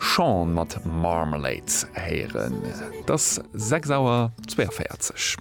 Sean mat Marmalade héieren. Et ass 6 Auer 42.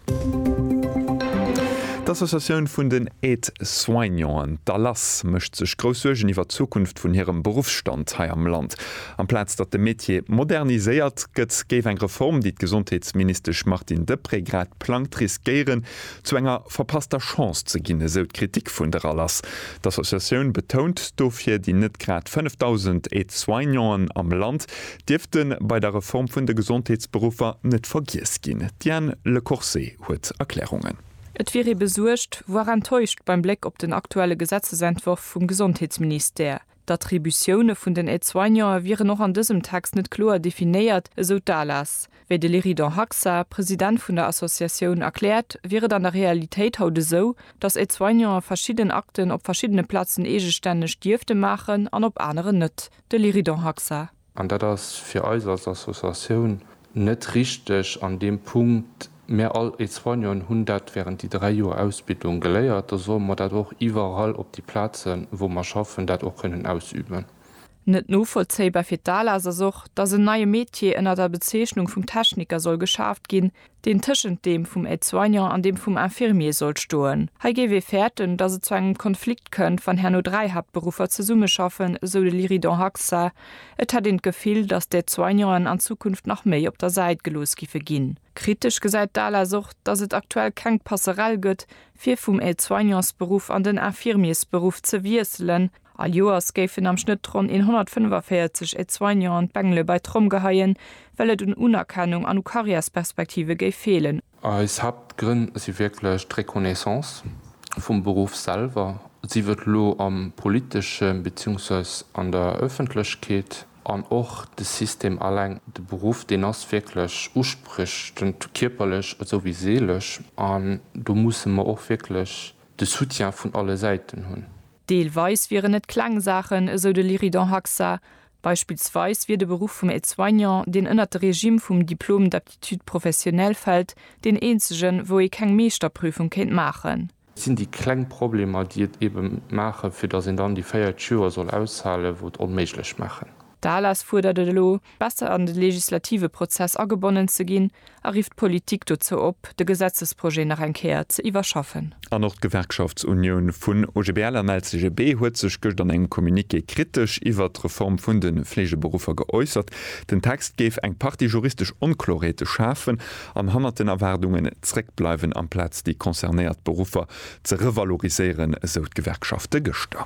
D'Associatioun vun den Aide-soignanten, d'ALAS, mécht sech grouss Suergen iwwer d'Zukunft vun hirem Beruffsstand hei am Land. Amplaz datt de Metier moderniséiert gëtt, géif eng Reform, déi d'Gesondheetsministesch Martine Deprez grad plangt, riskéieren, zu enger verpasster Chance ze ginn, esou d'Kritik vun der Alas. D'Associatioun betount dofir, déi net grad 5.000 Aide-soignanten am Land dierfte bei der Reform vun de Gesondheetsberuffer net vergiess ginn. D'Diane Lecorse huet Erklärungen. Et wier ee besuergt, voire enttäuscht beim Bléck op den aktuelle Gesetzesentworf vum Gesondheetsministère. D'Attributioune vun den Aide-soignante wieren och an dësem Text net kloer definéiert, esou d'ALAS. Wéi de Léridon Haxa, President vun der Associatioun, erkläert, wier et an der Realitéit haut esou, datt Aide-soignante verschidden Akten op verschiddene Plazen eegestänneg dierfte maachen an op aneren net. De Léridon Haxa. An dat ass fir eis als Associatioun net richteg an deem Punkt. Mär all Aide-soignanten hunn dat während déi dräi Joer Ausbildung geléiert. Da solle mer dat och iwwerall op déi Plazen, wou mer schaffen, dat och kënnen ausüben. Net novollzéibar fir d'ALAS ass och, dass en neie Metier ënner der Bezeechnung vum Techniker soll geschaaft ginn, deen tëschent deem vum Aide-soignant an deem vum Infirmier sollt stoen. Hei géif ee fäerten, datt et zu engem Konflikt kënnt, wann herno dräi Haaptberuffer zesummeschaffen, esou de Liridan Haxa. Et hätt een d'Gefill, datt d'Aide-soignanten an Zukunft nach méi op der Säit gelooss giffe ginn. Kritesch gesäit d'ALAS och, datt et aktuell keng Passerell gëtt, fir vum Aide-soignansberuff an den Infirmiersberuff ze wiesselen, All Joers géifen am Schnëtt ronn 145 Aide-soignants an d'Bengele bei d'Tromm geheien, well et un Unerkennung an u Karriärsperspektive géif feelen. Eis Haaptgrënn si wierklech d'Reconnaissance vum Beruff selwer, sief et elo am politeschen, beziehungsweis an der Ëffentlechkeet, an och de System alleng. De Beruff, deen ass wierklech uspriechend, kierperlech esou wéi seelesch, an do musse mer och wierklech de Soutien vun alle Säiten hunn. Deelweis wieren et kleng Saachen, esou de Liridan Haxa. Beispillsweis wier de Beruff vum Aide-soignant, deen ënnert de Regimm vum Diplôme d'aptitude professionnelle fält, deen eenzegen, wou ee keng Meeschterprüfung kéint maachen. Et sinn déi kleng Problemer, déi et eebe maachen, fir datt een dann déi véiert Joer soll aushalen, wou et onméiglech maachen. D'ALAS fuerdert et elo, besser an de legislative Prozess agebonnen ze ginn a rifft d'Politik dozou op, de Gesetzesprojet nach eng Kéier ze iwwerschaffen. An och d'Gewerkschaftsunioun vun OGBL an LCGB huet sech gëscht an engem Communiqué kritesch iwwert d'Reform vun de Fleegeberuffer geäussert. Den Text géif eng Partie juristesch Onkloreete schafen an hannert den Erwaardungen zréckbleiwen, amplaz déi concernéiert Beruffer ze revaloriséieren, esou d'Gewerkschafte gëschter.